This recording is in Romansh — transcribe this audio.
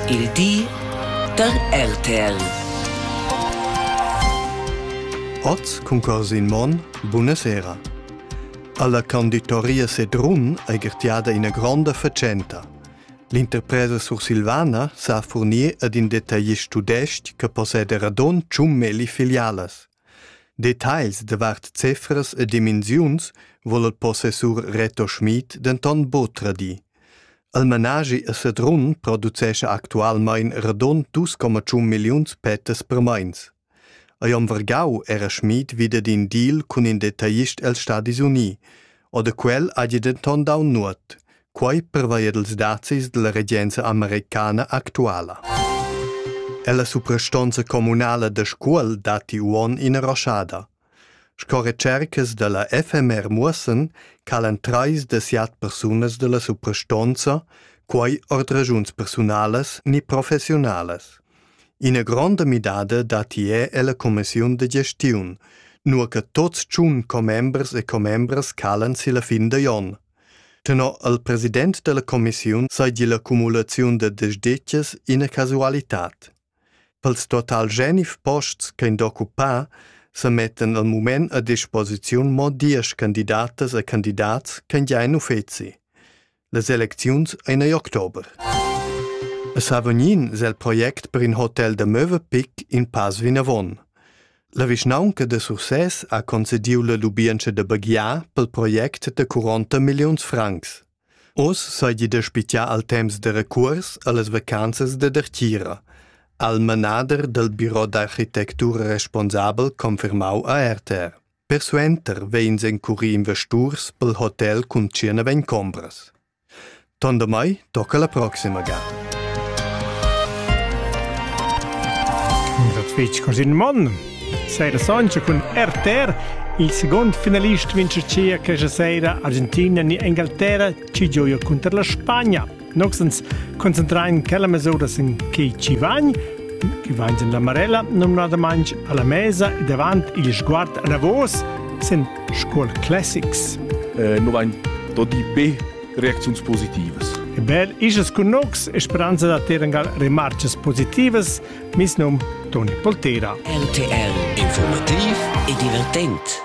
Il di da RTL. Oz cun Corsin Monn, bunasera. Alla conditoria Sedrun ei gertiada ina gronda fatschenta. L'interpresa sursilvana sa furnir ad in detaglist tudestg che posseda radon tschun melli filialas. Details davart cefras e dimensiuns vol il possessur Reto Schmid denton buca tradir. El manaschi a Sedrun producescha actualmein radund dus comma tschun milliuns pettas per meins. Ei om vargau era Schmid wieder d'in deal cun in detaglist els Stadis Uni, o da quel hagi denton dau nuot, quei pervei ed els dazis dalla regenza americana actuala. Ella suprastonza communala da Scuol datti uonn ina roschada. Sco retschercas da la FMR muossan chalan trais da siat persunas da la suprastonza, quai ord raschuns persunalas ni professiunalas. Ina gronda midada datti er ella cumissiun da gestiun, nua che tuts tschun commembers e commembras chalan si la fin da onn. Tenor il president da la cumissiun saigi la cumulaziun da desditgas ina casualitad. Pels total Genf posts ch'ein d'occupar semettan al mument a disposiziun mo diesch candidatas e candidats ch'han gia in uffeci. Las elecziuns ein ei october. A Savognin es el project per in hotel da Möwe Pic in pass vinavon. La vischnaunca da Sursès ha concediu la lubientscha da baghiar pel project da 40 milliuns francs. Oz seigi da spitar al temps da recuors allas vacanzas da dertgira, ha il manader dal biro d'architectura responsabel confermau a RTR. Persuenter vegns encurì investurs pel hotel cun tschierneven combras. Tondamai tocca la proxima gata. Dat fetg cos in man. Sera sontga cun RTR il second finalist vince cia questa sera Argentina ni Inghilterra ci gioia contro la Spagna. Noxens concentrain quella mesuras in che ci vagn, che vagn in la Marella nominadamente alla mesa e davanti il sguard a Davos sin Scuol Classics. Eh, no vain dodi be reaczions positivas. E bel isas cun nox, speranza da terengal remarches positivas Mes num Toni Poltera. RTL Informativ e divertent